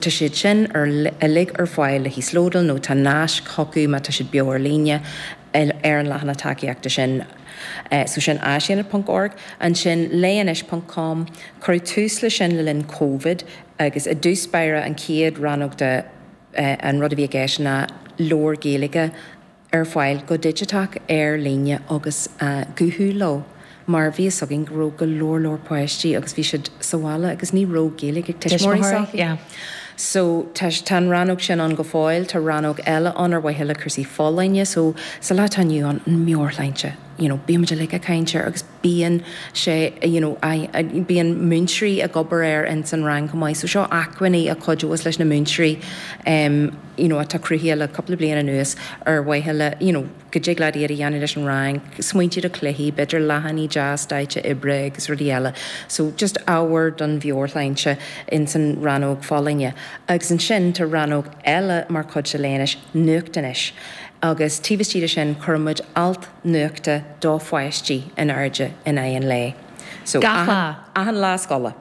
Tá siad sin uilig ar fáil le híoslódáil nó tá naisc chucu má tá siad beo ar líne ar an leathanach tacaíochta sin. So sin áisaonad.org. Ansin, léigh anois ponc com. Cuireadh tús leis sin le linn Covid agus i dtús báire an chéad rannóg de an rud a bhí i gceist ná leabhair Ghaeilge, ar fáil go digiteach ar líne agus guthú leo mar bhí fhios againn go raibh go leor leor páistí agus bhí siad sa bhaile agus ní raibh Gaeilge ag tuismitheoirí s'acu so tá tá an rannóg sin ann go fóill tá rannóg eile ann ar mhaithe le cúrsaí folláine so sa lá atá inniu ann an meabhairshláinte you know bímid uilig ag caint air agus bíonn sé, you know, bíonn múinteoirí ag obair air ins an rang chomh maith so seo acmhainní a chuideos leis na múinteoirí ehm you know atá cruthaithe le cúpla bliain anuas ar mhaithe le you know go dtig leat iad a dhéanamh leis an rang, smaointe do chluichí, b'fhéidir leathanaigh deas daite oibre agus rudaí eile so just ábhar don mheabhairshláinte ins an rannóg folláine agus ansin tá rannóg eile mar chuid de Léigh Anois, nuacht anois agus taobh istigh de sin cuireann muid alt nuachta do pháistí in airde in aghaidh an lae. So, achan lá scoile,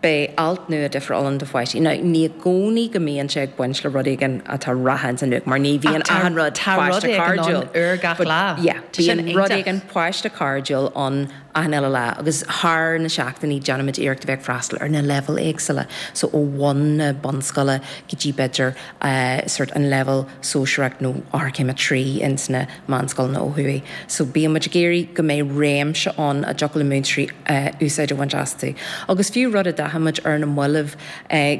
beidh alt nua difriúil ann do pháistí. Now, ní i gcónaí go mbíonn sé ag baint le rud éigin atá reatha ins an nuacht, mar ní bhíonn achan rud páiste cairdiúil, but, yeah, bíonn rud éigin páiste cairdiúil ann achan uile lá, agus thar na seachtainí, déanaimid iarracht a bheith ag freastal ar na leibhéil éagsúla, so ó bhun na bunscoile go dtí, b'fhéidir, sórt an leibhéal. sóisearach nó Eochairchéim 3 ins na meánscoileanna ó thuaidh. So bíonn muid ag iarraidh go mbeidh réimse ann a dtiocfadh le múinteoirí úsáid a bhaint astu. Agus fiú rud a d'aithin muid ar na mallaibh,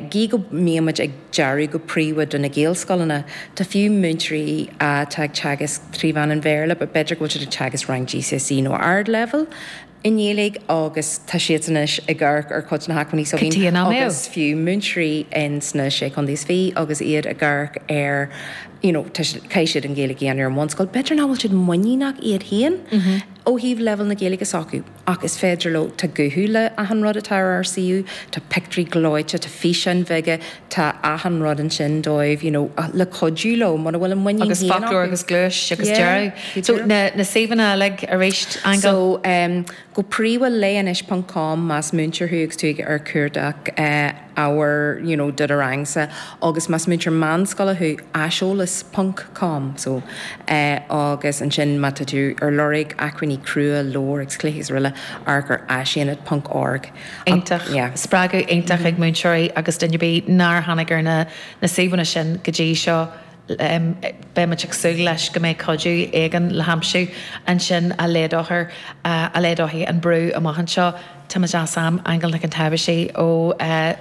gí go mbíonn muid ag dearú go príomha do na Gaelscoileanna, tá fiú múinteoirí atá ag teagasc trí mheán an Bhéarla, b'fhéidir go bhfuil siad ag teagasc rang GCSE nó Ardleibhéal, I nGaeilge agus tá siad anois ag amharc ar chuid de na hacmhainní s'againn agus fiú múinteoirí ins na Sé Chontae is fiche agus iad ag amharc ar you know tá siad caithfidh siad an Ghaeilge a dhéanamh ar an mbunscoil b'fhéidir nach bhfuil siad muiníneach iad féin ó thaobh leibhéal na Gaeilge s'acu ach is féidir leo tá guthú le achan rud atá ar ár suíomh tá pictiúirí gleoite tá físeáin bheaga tá achan rud ansin dóibh you know le cuidiú leo mura bhfuil a muinín féin acu. Agus foclóir agus gluais agus deireadh. So na suíomhanna uilig arís Aingeal? So go príomha léigh anois ponc com más múinteoir thú agus tú ag ar cuardach ábhar you know do do rangsa agus más múinteoir meánscoile thú aiseolas ponc com so agus ansin má tá tú ar lorg acmhainní crua, leabhair agus cluichí agus araile amharc ar áisaonad ponc org. iontach, spreagadh iontach ag múinteoirí agus duine ar bith nár tháinig ar na na suíomhanna sin go dtí seo, beidh muid ag súil leis go mbeidh cuidiú éigin le haimsiú ansin a laghdófar, a laghdóidh an brú amach anseo, tá muid as am, Aingeal Nic an tSábhaisigh ó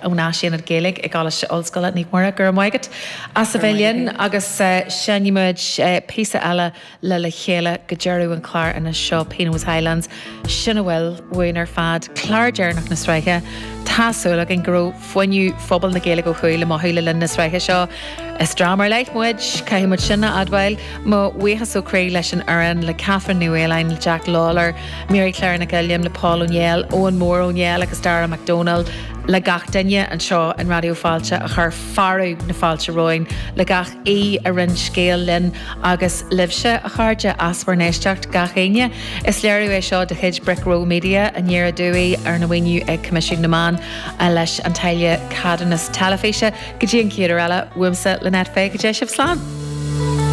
ón Áisaonad Gaeilge i gColáiste Ollscoile Naomh Muire, go raibh maith agat as a bheith linn agus seinnfidh muid píosa eile le le chéile go deireadh an chláir anois seo, Pino's Highlands, sin a bhfuil uainn ar fad, clár deireanach na sraithe. Tá súil againn go raibh fuinneamh phobal na Gaeilge ó thuaidh le mothú le linn na sraithe seo. Is dream ar leith muid, caithfidh muid sin a admháil. Mo bhuíochas ó chroí leis an fhoireann, le Kathryn Ní Mhaoláin, le Jack Lawlor, Mary Claire Nic Uilliam, le Paul Ó Néill, Eoghan Mór Ó Néill agus Darragh McDonald, le gach duine anseo in Raidió Fáilte a chuir fearadh na fáilte romhainn, le gach. aoi a roinn scéal linn agus libhse, a chairde, as bhur n-éisteacht, gach éinne. Is léiriú é seo de chuid Brick Row Media, i nDoire aduaidh arna mhaoiniú ag Coimisiún na Meán leis an táille ceadúnais teilifíse. Go dtí an chéad uair eile, uaimse, Lynette Fay, go dté sibh slán!